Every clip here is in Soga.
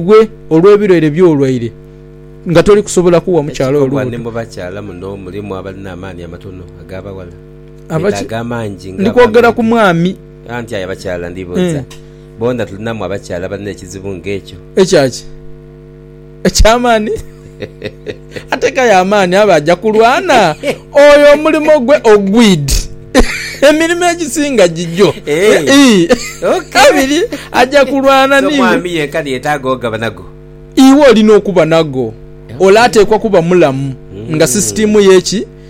gwe olw'ebilwaire byo olwaire nga toli kusobola kugha mukyala oyo lubuto. Mu bakyala muno mulimu abalina amaani amatono ag'abaghala betaaga amangi nga ab'amayumbi. Anti aye abakyala ndibuuza, boona tulinamu abakyala abalina ekizibu ng'ekyo? Ekyaki? Eky'amaani? Ateekayo amaani abe aja kulwana. Oyo omulimo gwe ogwid. Emirimo egisinga gigyo. Kabiri aja kulwana ni. So mwami yenka niyetaaga ogaba nago? Iwe olina okuba nago. Ole ateekwa kuba mulamu nga sisitiimu ye ki?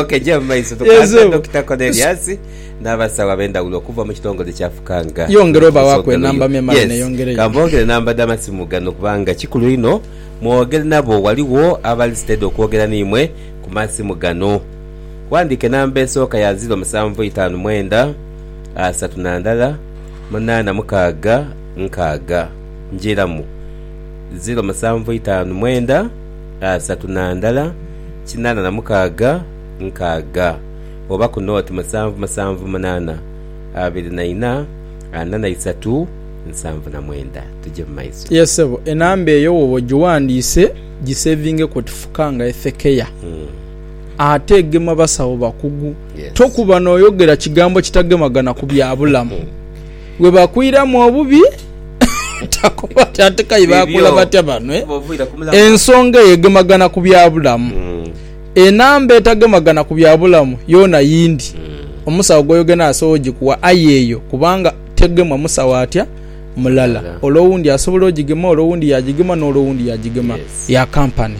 ok gya mu maiso tukwasa Dokita Cornelius n'abasawo ab'endhawulo okuva mu kitongole kya Fukanga. Yongera obawaku enamba memale yes. neyongereyo. Kamboogere namba dha masimu gano kubanga kikulu inho mwogere nabo waliwo abali steady okwogera n'imwe ku masimu gano. Wandiika enamba esooka ya ziro musanvu itaanu mwenda asatu na ndala munaana mukaaga nkaaga. Njiiramu, ziro musanvu itaanu mwenda. asatu na ndala kinaana na mukaaga nkaaga, oba ku nooti musanvu musanvu munaana abiri na ina ana na isatu nsanvu na mwenda. Tuje mu maiso. Yes sebo enamba eyo woba ojiwandiise jisevinge ku oti fuka nga ethekeya ate egema basawo bakugu tokuba noyogera kigambo kitagemagana ku byabulamu. Gwe bakwiramu obubi takoba nti ate k'aye baakula batya bano. Ensonga eyo egemagana ku bya bulamu. Enamba etagemagana ku bya bulamu yoona yindi omusawo gw'oyogera naye asobola ogikuwa aye eyo kubanga tegemwa musawo atya? Mulala. Ole owundi asobola ogigema, ole owundi yaagigema n'ole owundi yaagigema. Ya kampani.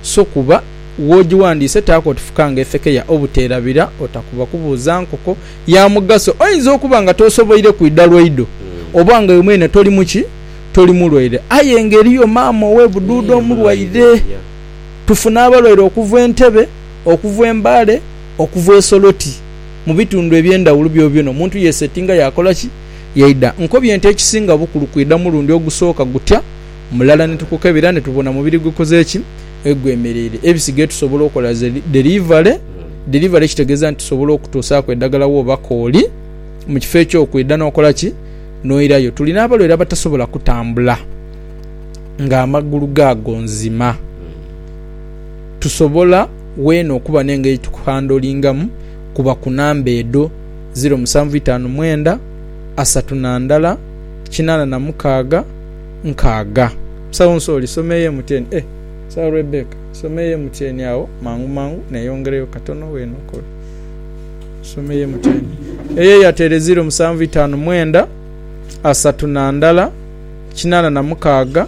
So kuba w'ogiwandiise taako oti fukanga efekeya obuteerabira, otakuba kubuuza nkoko. ya mugaso. Oinza okuba nga tosoboire kwidha lwaidho oba nga iwe mwene toli mu ki? Toli mulwaire. Aye nga eriyo maama ow'e Buduuda omulwaire. Tufuna abalwaire okuva e Ntebe, okuva e Mbale, okuva e Soroti, mu bitundhu eby'endhawulo byobyona omuntu yeesetinga yaakola ki? Yaidha. Nkobye nti ekisinga bukulu kwidha mulundi ogusooka gutya mulala ni tukukebera ni tubona mubiri gukoze ki? egwemereire ebisigaire tusobola okola ze dherivale. Dherivale kitegeeza nti tusobola okutuusaaku edhagala wooba kooli mu kifo eky'okwidha n'okola ki? N'oirayo. Tuli n'abalwaire abatasobola kutambula ng'amagulu gaago nzima. Tusobola weena okuba n'engeri tukuhandolingamu kuba ku namba edho, ziro musanvu itaanu mwenda, asatu na ndala, kinaana na mukaaga. nkaaga. Musawo Nsooli, soma eyo emutyeeni. Eh! Musawo Rebecca, soma eyo emutyeeni agho mangu mangu, neyongereyo katono w'enokobe. Soma eyo emutyeeni. Eyo eyateere ziiro musanvu itaanu mwenda, asatu na ndala, kinaana na mukaaga.